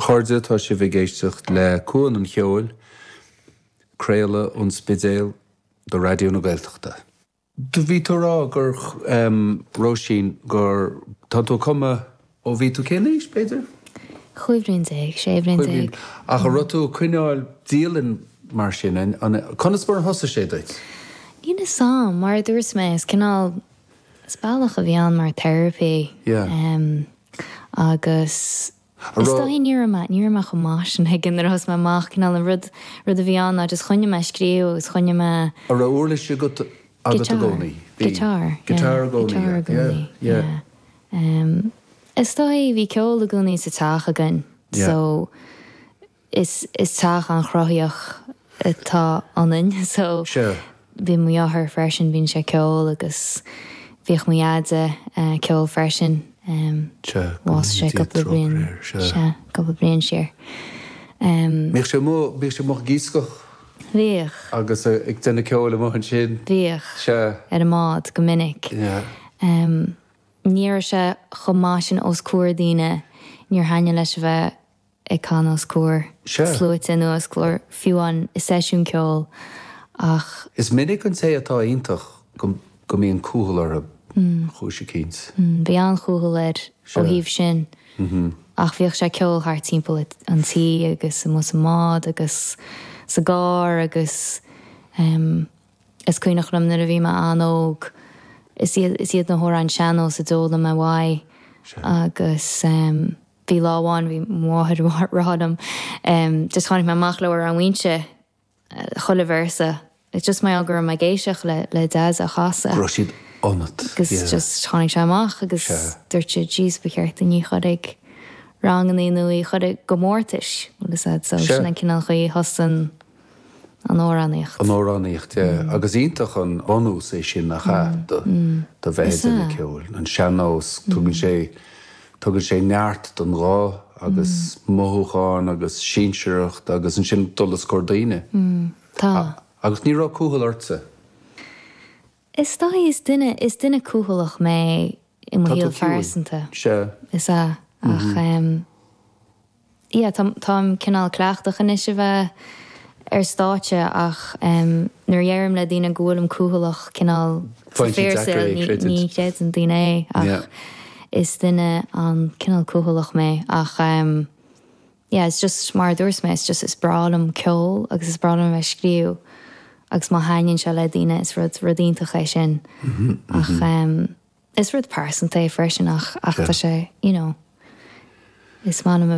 chairde, tá sibh ag éisteacht le Cuan an Cheoil, craoladh ón Spidéal do Raidió na Gaeltachta. Do bhí tú a rá ag rá, em, Róisín, gur, tá tú ag cumadh ó bhí tú cén aois, b'fhéidir? Chúig bhliain déag, sé bhliain déag. Chúig bhliain. Ach a' raibh tú a' coinneáil dialann mar sin, an, conas mar a thosaigh sé duit? Ní 'fhios a'm, mar a dúirt mé, is cineál, Is bealach a bhí ann mar therapy em agus is dóigh ní raibh mé ní raibh mé chomh maith sin ag an nuair a thosaigh mé amach cineál an rud rud a bhí ann ná just choinnigh mé scríobh agus choinnigh mé a raibh uirlis agat i gcónaí bhí guitar guitar i gcónaí yeah yeah yeah em is dóigh bhí ceol i gcónaí sa teach againn so is is teach an-chruthaitheach atá ionainn so Sure. bhí mo dheartháir freisin bíonn sé ceol agus bhíodh mo dheaide ceol freisin em Bhásaigh sé cúpla bliain sea cúpla bliain siar em Bhíodh sé amuigh bhíodh sé amuigh ag iascach bhíodh agus ag déanamh ceoil amuigh ansin bhíodh sea ar an mbád go minic yeah em ní raibh sé chomh maith sin os comhair daoine níor thaitnigh leis a bheith ag canadh os comhair sluaite ná os comhair fiú amháin i seisiún ceoil ach. Is minic an té atá iontach go mbíonn cúthail orthu cúis eicínt. Bhí an-chúthail air ó thaobh sin ach bhíodh sé ceol thart timpeall an tí agus amuigh sa mbád agus sa gcarr agus em is cuimhneach liom nuair a bhí mé an-óg is iad is iad na hamhráin sean-nós a d'fhoghlaim mé uaidh agus em. Bhí lá amháin, bhí mo mháthair a' rá liom, just tháinig mé amach le hAmhrán Mhuínse, chuile véarsa, is just mar gheall go raibh mé ag éisteacht le, le Dad á chasadh. Go raibh siad ionat, yeah. Agus just tháinig sé amach agus dúirt sí jeez ba cheart dúinn í a chur chuig ranganna nó í a chur chuig comórtais, bhuel 'fhios a'd so sin an cineál chaoi a thosaigh an, an amhránaíocht. an amhránaíocht yeah agus iontach an bunús é sin nach ea do do bheith ag déanamh ceoil. An sean-nós tugann sé tugann sé neart don ghuth agus mothúcháin agus sinsearacht agus ansin dul os comhair daoine. Tá. Agus ní raibh cúthail ortsa? Is dóigh is duine, is duine cúthaileach mé i mo Tá tú shaol ciúin. phearsanta. Sea. Is ea. Ach em. Yeah, tá, táim cineál cleachtach anois a bheith ar stáitse ach em, nuair a dheirim le daoine go bhfuilim cúthaileach cineál sa Bíonn sé fíordheacair é saol a ní, chreidiúint. ní chreideann daoine é ach Yeah. is duine an, cineál cúthaileach mé ach em. Yeah, is just mar a dúirt mé, is just, is breá liom ceol agus is breá liom a bheith ag scríobh agus má thaitníonn sé le daoine is rud, rud iontach é sin ach is rud pearsanta é freisin ach, ach tá sé, you know, is maith liom a.